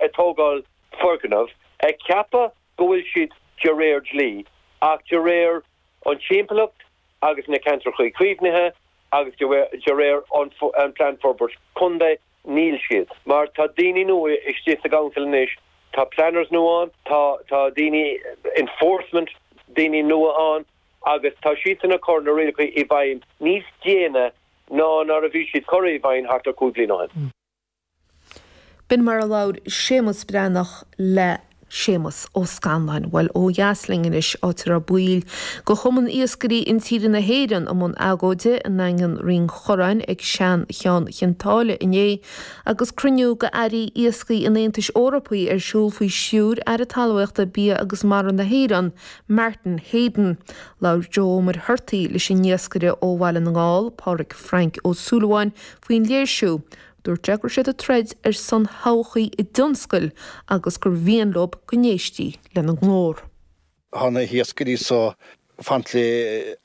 ag tógáil foirgneamh, ag ceapadh go bhfuil siad de réir dlí, ach de réir an timpeallacht agus na Ceantair Chuí Caomhnaithe agus de réir an Plean Forbairt Contae níl siad. Mar tá daoine nua istigh sa gCouncil anois, tá planners nua ann, tá daoine enforcement daoine nua ann agus tá siadsan ag cur na rialacha i bhfeidhm níos déine ná nuair a bhí siad curtha i bhfeidhm thart ar cúig bhliain ó shin. B'in mar a labhair Séamus Breathnach le Séamus Ó Scanláin. Bhuel, ó dheas linn anois, áit a raibh baill de Chumann Iascairí Intíre na hÉireann i mbun agóide i nDaingean Rinn Chorráin ag Seancheann Chionn tSáile inné agus cruinniú de Airí Iascaigh an Aontais Eorpaigh ar siúl faoi stiúir Aire Talmhaíochta, Bia agus Mara na hÉireann, Martin Heydon. Labhair Joe Ó Muircheartaigh leis an iascaire ó Bhaile na nGall, Pádraic Frainc Ó Súilleabháin, faoin léirsiú. Dúirt sé go raibh siad ag troid ar son thodhchaí a dtionscail agus gur mhian leo go n-éistí lena nglór. Tá na hiascairí so ag caint le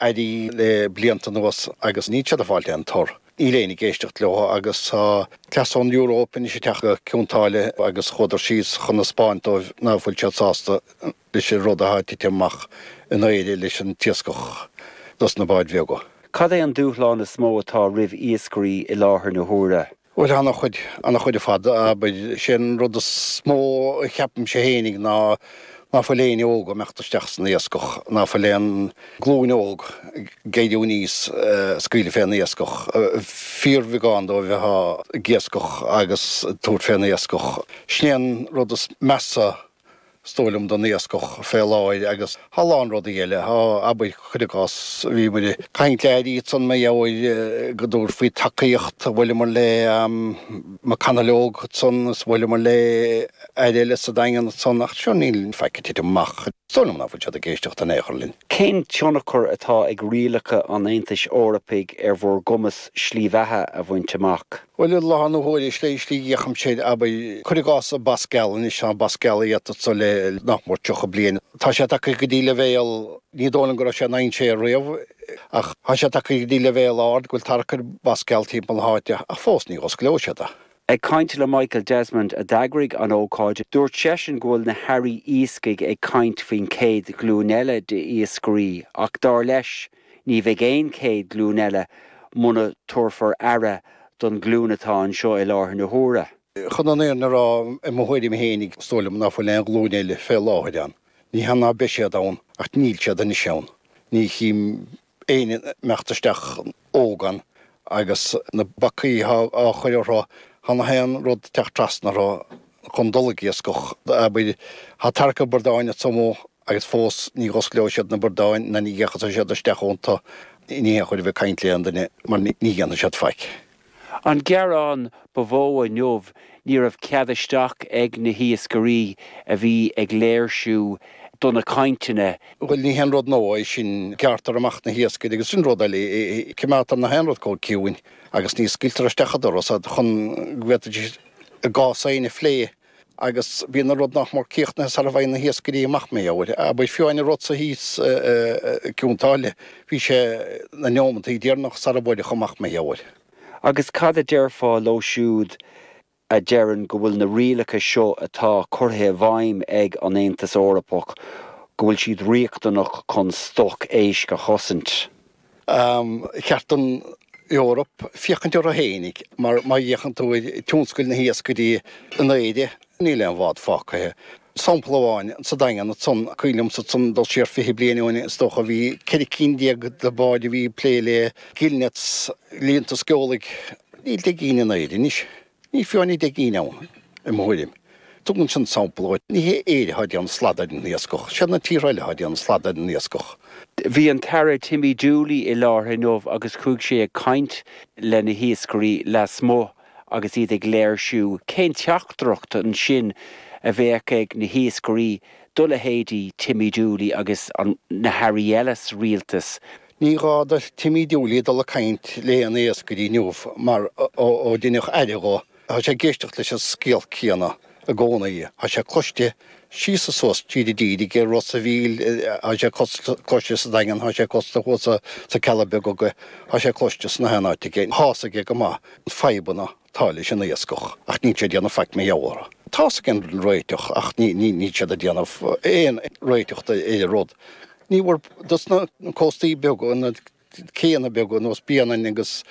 airí le blianta anuas agus níl siad ag fáil aon tor. Níl éinne ag éisteacht leo agus tá cleas ón Eoróip anois ag teacht go Cionn tSáile agus chuadar síos chun a 'spáint dóibh ná fuil siad sásta. leis an rud athá ag titim amach in Éire leis an t-iascach dos na báid bheaga. Cad é an dúshlán is mó atá roimh iascairí i láthair na huaire? Bhuel, ana-chuid, ana-chuid ar fad, abair. 'Sé an rud is mó a cheapaimse fhéinig ná, ná fuil éinne óg ag imeacht isteach san iascach, ná fuil aon glúin óg ag éirí aníos ag scaoileadh fén iascach. Fíorbheagán dóibh athá ag iascach agus ag tabhairt fén iascach. Sin é an rud is measa 's dóigh liom don iascach fé láthair agus a lán rudaí eile. Abair, cuir i gcás, bhíomair ag caint le Aire ansan mí Fheabhra go dtabharfaí tacaíocht, bhuaileamair le McConalogue ansan is bhuaileamair le Aire eile sa Daingean ansan ach sure níl faic ag titim amach. Is dóigh liom ná fuil siad ag éisteacht in ao' chor linn. Cén tionchar atá ag rialacha an Aontais Eorpaigh ar bhur gcumas slí bheatha a bhaint amach? Bhuel, i láthair na huaire, 'sé slí a fhéachaimse air, abair, cuir i gcás, an Bas Geal, anois tá an Bas Geal iata anso le nach mór tríocha bliain, tá sé tagtha go dtí leibhéal, ní dóigh liom go raibh sé in aon dainséar riamh, ach tá sé tagtha go dtí leibhéal ard go bhfuil tarrac ar Bhas Geal timpeall na háite, ach fós ní osclóidh siad é. Ag caint le Michael Desmond, a d'eagraigh an ócáid, dúirt seisean go bhfuil na hairí iascaigh ag caint faoin chéad ghlúin eile d'iascairí ach, dar leis, Ní bheidh aon chéad ghlúin eile muna dtabharfar aire don ghlúin atá anseo i láthair na huaire. Chun an fhírinne a rá, i mo thuairim fhéinig, is dóigh liom ná fuil aon ghlúin eile fé láthair ann. Ní hea ná beidh siad ann, ach níl siad anois ann. Ní chím éinne ag imeacht isteach óg ann agus na bacaí atá á chur orthu thá nach aon rud ag teacht trasna orthu chun dul ag iascach. Abair, thá tarraic an bhradáin a tzomadh. agus fós ní dh'osclóidh siad na bradáin ná ní dh'fhéachfaidh siad isteach iontu, ní haon chabhair a bheith ag caint le aon duine mar ní dhéanfaidh siad faic. An gearán ba mhó inniu ní raibh cead isteach ag na hiascairí a bhí ag léirsiú do na cainteanna. Bhuel ní haon rud nua é sin, gearrtar amach na hiascairí agus sin rud eile, cimeádtar nach aon rud chomh ciúin agus ní scaoiltear isteach an doras iad chun go bhféadfaidís a gcás féin a phlé. agus bíonn an rud nach mór críochnaithe sara bhfaigheann na hiascairí amach mar gheall air. Abair fiú amháin an rud san thíos i gCionn tSáile bhí sé na neomantaí deireanacha sara bhfuaireadh amach mar gheall air. Agus cad a déarfá leo siúd a deireann go bhfuil na rialacha seo atá curtha i bhfeidhm ag an Aontas Eorpach go bhfuil siad riachtanach chun stoc éisc a chosaint? Ba cheart don Eoraip féachaint orthu fhéinig mar má fhéachann tú ar tionscal na hiascairí in Éire níl aon bhád fágtha. Sampla amháin, sa Daingean ansan, cuimhin liomsa san dul siar fiche bliain ó shin is dócha, bhí ceithre cinn déag de bháid a bhí ag plé le gill nets, líonta sceolbhaigh, níl deich gcinn in Éirinn anois. Níl fiú amháin deich gcinn ann, i mo thuairim. Tugann sin sampla dhuit. Ní hé Éire athá déanamh slad ar an iascach. 'Siad na tíortha eile athá déanamh slad ar an iascach. Bhí an tAire Timmy Dooley i láthair inniu agus chuaigh sé ag caint le na hiascairí lasmuigh agus iad ag léirsiú. Cén teachtaireacht ansin a bheadh ag na hiascairí do leithéidí Timmy Dooley agus na hAirí eile sa Rialtas? Ní gá do Timmy Dooley dul ag caint le aon iascaire inniu mar ó deineadh Aire dho tá sé ag éisteacht leis an scéal céanna i gcónaí. Tá sé cloiste síos is suas, tríd an dtír, aige i Ros a' Mhíl, tá sé cloiste sa Daingean, tá sé cloiste thuas sna Cealla Beaga aige, tá sé cloiste ins nach aon áit aige. Tá's aige go maith fadhbanna atá leis an iascach, ach níl sé ag déanamh faic mar gheall air. Tá's aige an réiteach, ach níl siad ag déanamh aon réiteach do aon rud. Ní bhfuair, dos na cóstaí beaga, na céanna beaga nós Bréanainn agus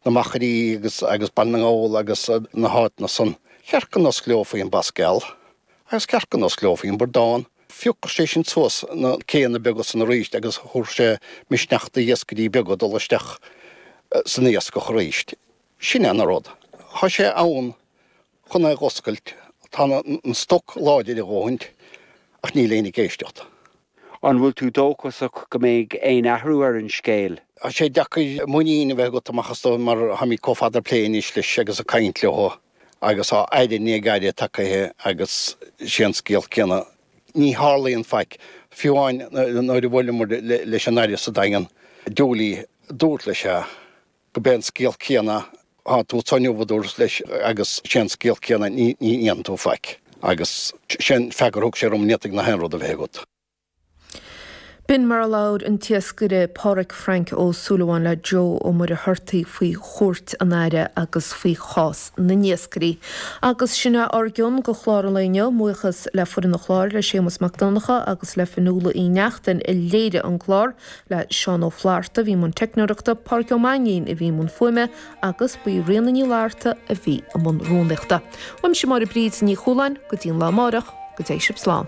na Machairí agus agus Baile na nGall agus na háiteanna san, cheart go n-osclófaí an bas geal agus ceart go n-osclófaí an bradán. Phiocfadh sé sin suas na céanna beaga san arís agus thabharfadh sé misneach do iascairí beaga dul isteach san iascach arís. Sin é an rud. Thá sé ann chun é dh'oscailt. Tá an stoc láidir a dhóthain, ach níl éinne ag éisteacht. An bhfuil tú dóchasach go mbeidh aon athrú ar an scéal? Thá sé deacair muinín a bheith agat amach is dóigh mar táimid comh fada plé anois leis agus ag caint leothu agus thá Aire i ndiaidh Aire tagtha agus sé an scéal céanna. Ní tharlaíonn faic. Fiú amháin nuair a bhuaileamar leis an Aire sa Daingean, Dooley, dúrt leis é. gob é an scéal céanna thá tú so inniu a dúras leis agus sé an scéal céanna ní dhéanann tú faic agus sé an freagra a thug sé orm ní fhéadfadh gach aon rud a bheith agat. B'in mar a labhair an t-iascaire Pádraig Frank Ó Súilleabháin le Joe Ó Muircheartaigh faoi chuairt an Aire agus faoi chás na n-iascairí. Agus sin é ár gcion de chlár an lae inniu. Mo bhuíochas le foireann an chláir, le Séamus Mac Donncha agus le Fionnuala Uí Neachtain i léiriú an chláir. le Seán Ó Flaithearta a bhí i mbun teicneoireachta, Pádraig Ó Mainnín a bhí i mbun fuaime agus ba í Ríona Ní Fhlaithearta a bhí i mbun rúnaíochta. Uaimse Máire Bríd Ní Chualáin, go dtí an lá amárach, go dté sibh slán.